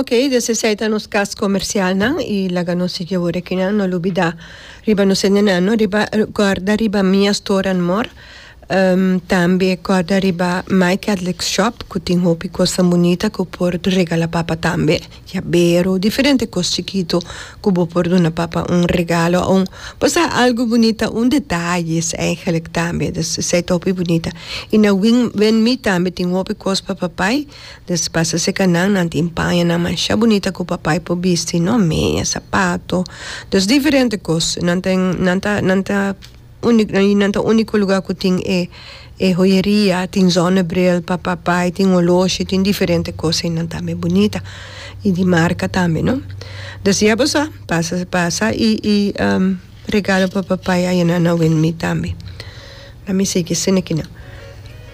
Ok des esei ta nos kas komersialnan i laga nos sigui awor ekinan no lo bida riba nos hendenan no riba kòrda riba Mia Store and More tambe kòrda riba My Catholic Shop ku tin hopi kosnan bunita ku por regala papa tambe yabero diferente kos chikitu ku bo por duna papa un regalo a un bo sa algu bunita un detayes eigenlik tambe des esei ta hopi bunita i na win win me tambe tin hopi kos pa papay. Despues ta seka nan, nan tin paña nan mashá bunita ku papai por bisti, no meña, sapato, dus diferente kos. Nan ta en, nan ta, nan ta úniko, i nan ta úniko lugá ku tin e, e hoyeria, tin zònebril pa papai, tin oloshi, tin diferente kos, nan ta mi bunita i di marka tambe, no. Des di abo sa, pasa, pasa i, i regalo pa papai ayina na Wilmie tambe. Lami sigui sin aki nan.